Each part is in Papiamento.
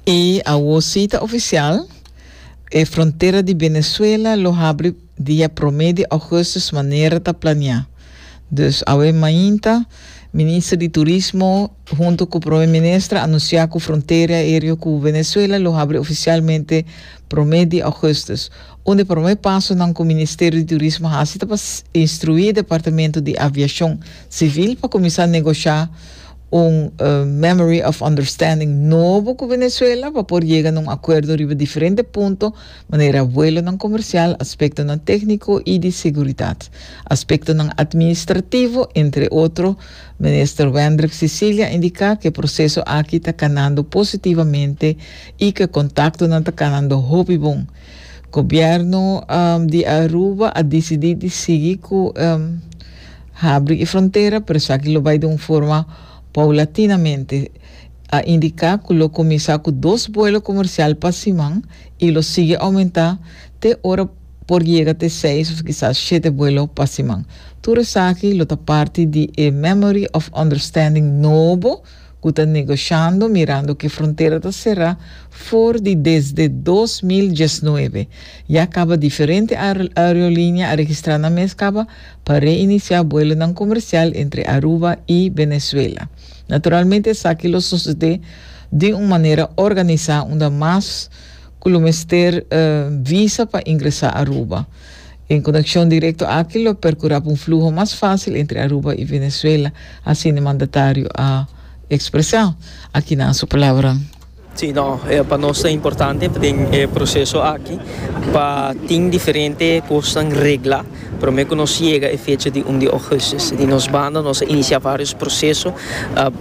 I awo si ta ofisial, e frontera di Venezuela lo habri dia promé di Augustus manera ta planiá. Dus awe mainta, Minister di Turismo huntu ku Prome Minister anunsiá ku frontera aéreo ku Venezuela lo habri ofisialmente promé di Augustus, un di promé pasonan ku Ministerio di Turismo hasi ta pa instruí Departamento di Aviashon Sivil pa kuminsá negoshá un Memory of Understanding nobo ku Venezuela pa por yega na un akuerdo riba diferente punto manera vuelonan komersial, aspektonan tékniko i di seguridat, aspektonan atministrativo, entre otro. Minister Wendrick Cecilia indiká ku e proseso aki ta kanando positivamente i ku e kontaktonan ta kanando hopi bon. Gobièrnu di Aruba a disidí di sigui ku. Habri e frontera, pero esaki lo bai di un forma paulatinamente, a indiká ku lo kuminsá ku dos buelo komersial pa siman i lo sigui oumentá te ora por yega te seis òf kisas shete buelo pa siman. Tur esaki lo ta parti di e Memory of Understanding nobo ku ta negoshando mirando ku e frontera ta será for di desde dos mil diesnuebe, ya kaba diferente aerolinia a registrá nan mes kaba pa reinisiá buelonan komersial entre Aruba i Venezuela. Naturalmente esaki lo sosodé di un manera organisá unda mas ku lo mester visa pa ingresá Aruba. Un konekshon direkto aki lo perkurá pa un fluho mas fásil entre Aruba i Venezuela, asina e mandatario a ekspresá. Aki nan su palabranan. Sí, no, e pa nos ta importante pa tin e proseso aki, pa tin diferente kosnan regla promé ku nos yega e fecha di un di ougùstus. Di nos banda nos a inisiá vários proseso,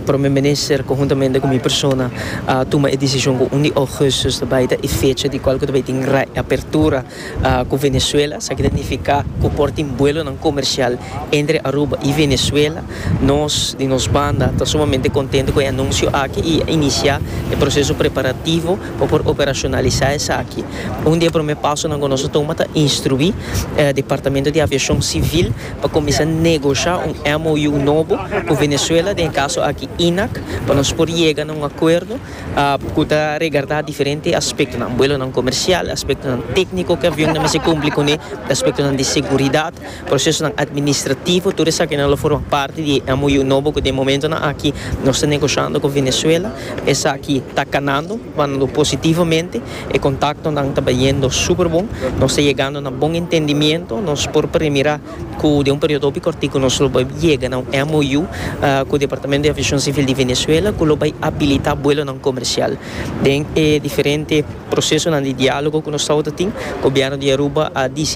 promé minister konhuntamente ku mi persona a tuma e desishon ku un di ougùstus ta bai ta e fecha di kual ku ta bai tin reapertura. Ku Venezuela, sa keda nifiká ku por tin buelonan komersial entre Aruba i Venezuela. Nos di nos banda ta sumamente kontentu ku e anunsio aki i inisiá e proseso preparativo pa por operashonalisá esaki. Un di e promé pasonan ku nos a tuma ta instruí e Departamento di Aviashon Sivil pa kuminsá negoshá un MOU nobo ku Venezuela, den e kaso aki INAC, pa nos por yega na un akuerdo. ku ta regardá diferente aspektonan, buelonan komersial, aspektonan tékniko ku e avion nan mester kumpli kuné, aspektonan di seguridat, prosesonan administrativo, tur esakinan lo forma parti di e MOU nobo ku den momentonan aki nos ta negosiando ku Venezuela. Esaki ta kanando, banando positivomente, e kontaktonan ta bayendo superbon, nos ta yegando na bon entendimiento, nos por premirá. Cu den un periodo hopi cortico nos lo bay yega na un MOU cu Departamento di Aviacion Civil di Venezuela cu lo bay habilita buelonan comercial. Den e diferente procesonan di dialogo cu nos tawata tin, Gobierno di Aruba a dicidi.